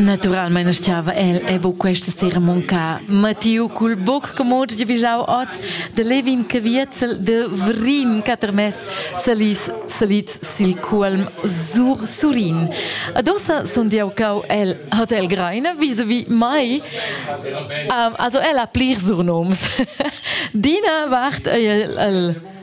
Naturalmein stava el e bu questa sera monca. Mattiu cul boc commod de bijau oz de Levin che vietzel de Vrin catermes salis salits sil cuolm sur Surin. Adossa sun diau cau el hat el greine vis-a-vis mai. Um, also el ha plir surnoms. Dina vart ei el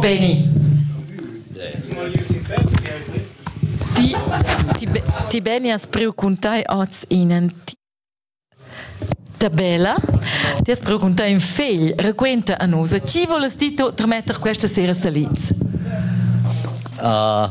Veni. Ti, ti, ti beni has priu cun tai oz inen tabella. Ti has priu cun tai in fegl. Requenta a nus, chi volas ti to trametter questa sera salids? Uh,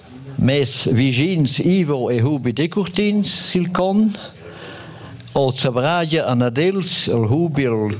Mes vischins Ivo e Hubi Decurtins sil con, oz zavragia an ad els il Hubi el